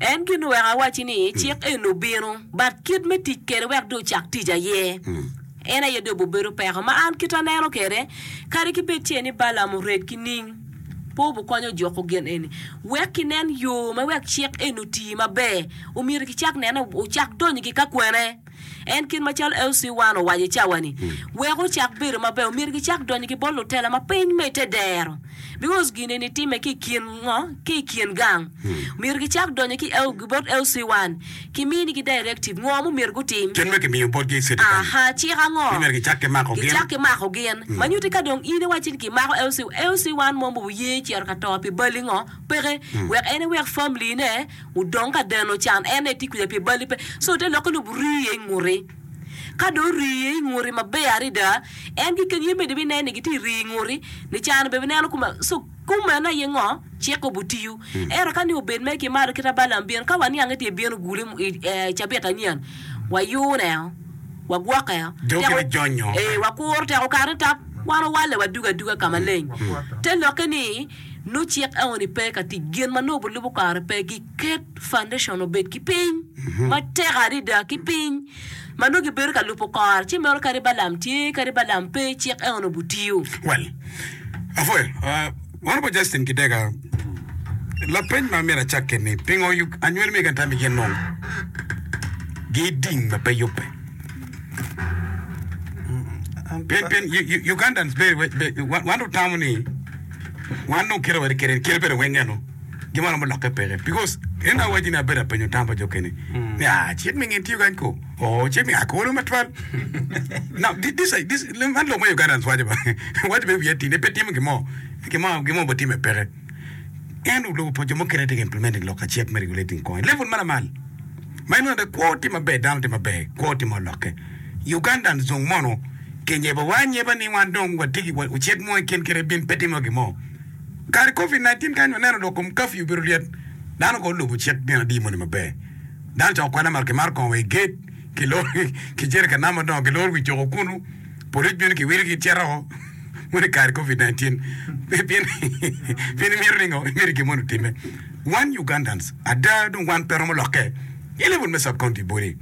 En gin oweko awacci ni cik eni obino, but kit me tic kwede wek dong ocak tic aye, en aye dong obibedo peko. Ma an kit aneno kwede, kadi ki bed ce ni Balaam ored ki ning, pe obikonyo juko gin eni. Wek kinen yo me wek cik eni oti maber, omyero kicak nene, ocak donyo ki ka kwene. En kit macalo Elsie Wan owaco i cawa-ni, wek gucak bedo maber, omyero gicak donyo ki bot lutela ma piny ma i te dero, bikos gin-ni nitimme ki i kin ngo? Ki i kin gang. Omyero gicak donyo ki El, ki bot Elsie Wan, kimiinigi directive ngo ma omyero gutim. Kit ma kimiyo botgi cetikali. Aha, cik ango? Ni myero gicak ki mako gin. Gicak ki mako gin. Ma nyutti ka dong in iwacci ni kimako Elsie, Elsie Wan mo ma oye cito ka to pi bali ngo? Peke. Wek en ewek family-ne. Odong ka deno can en aye tye kwija pi bali pe, so te lokke lobo rii iye inguti. Ka dong orii iye inguti maber adada, en keken ye mene binen ni gitye rii inguti, ni can obed bineno kume. So kumeno aye ngo? Cik obutiyu. Ento ka ni obed mere ki malo kit ma Balaam bino, ka waniang ni tye bino gule i cabit anyen, wayune o, wagwoke o, teko, ee, wakuro teko kare ni tap, wan owalle wadugo aduga ka maleng. Te lokke ni. Nongo cik eoni pe ka tic. Gin ma nongo bilubo kare pe giket foundation obed ki piny matek adada ki piny ma nongo gibedo ka lubo kore ci meno kadi Balaam tye kadi Balaam pe cik eoni obutiyo. Well, apwoyo uh, Honourable Justin Kidega, lapeny ma myero acakke ni pingo Ug- anywali me Uganda tami gin nongo giding ma pe yubbe? Pien, pien U- U- Ugandans be, be, be wan, wan utamo ni Wan dong kite wade kene kite bene weng eno gin ma romo lokke peke because en awaci ni abedo apenyo tam pa jo kene ni ah cik mi ngin tiyo kany ko oh cik mi ako wano matwal now thi- this is- this man lok ma Ugandans waco ba waco bene wiye tine pe timo gimo gimo gimo bo time peke en olubo pa jo mukene tye ka implementing lok ka cik me regulating coin level ma lamal Ma inongo aye kwo tye maber dano tye maber kwo tye ma olokke Ugandan zung mono ki nyeba wa anyeba ni wan dong wa tye ki wa ocek mo ikin kit ibin pe timo gin mo kare covid 19 kany waneno dong kom kafyu obedo ryet dano kono olubo cik gin adi moni maber dano coko kwena ma ki maro kongo wa i gate ki loro ki jerika nam ma dongo ki loro wi coko kunu polic bino ki wilo ki cito o moni kare covid 19 pien pien imito ni ngo imito gin moni otime. Wan Ugandans ada dong wan pe romo lokke i level me sub-county body.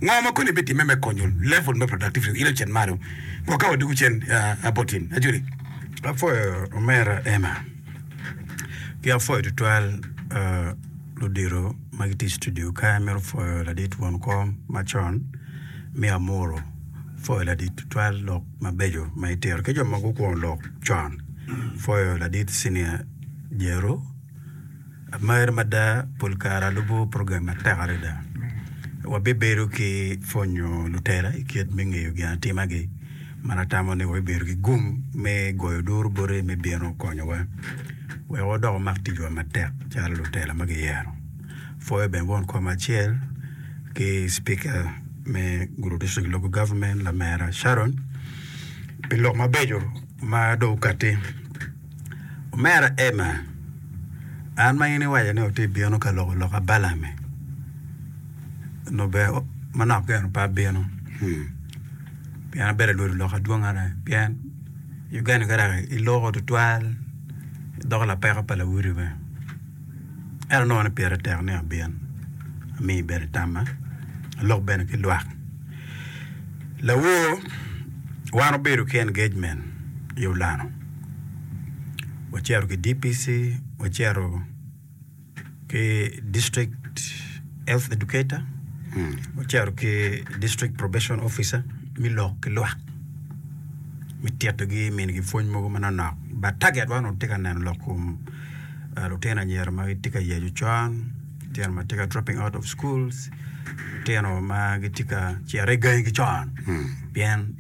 Ngo ma koni bitimme me konyo level me productivity ile ocen malo wa ka wadwogo cen about in? Ajoli. Apwoyo omera Emma ki apwoyo tutwal ludito ma gitye i studio ka. Amito pwoyo ladit won kom macon me Amuru. Apwoyo ladit tutwal lok mabeco ma itito ki jo ma gukwongo lok con. Apwoyo ladit Senior Jeru. Amer mada pol kare alubo program matek adada. Wabibedo ki pwonyo lutela i kit me ngeyo ginatimagi man atamo ni wabibedo ki gum me goyo duru bote me bino konyowa wek wadok wamak ticwa matek calo lutela ma giyero. Apwoyo bene won kom acel ki cipika me Gulu District Local Government lamera Sharon pi lok mabeco ma dong okatti. Omera Emma, an ma in iwaco ni wutye ka bino ka loko loka Ballame, onongo ber manok geno pe abino, pien abedo ka lwodo lok adwongere. Pien Uganda ka dok iloko tutwal, idoko lapeko pa lawote bene. Ento anongo ni pire tek ni abin, ami ibedo tamma, alok bene ki lwak. Lawo, wan wubedo ki engagement i Ulano. wacito ki DPC, wacito ki district health educator, wacito ki district probation officer me lok ki lwak me titogi minigi pwony mogo manonok but target wa onongo tye ka neno lok kom lutino anyira ma gitye ka yeco con, lutino ma gitye ka dropping out of schools, lutino ma gitye ka cito i gangi ki con pien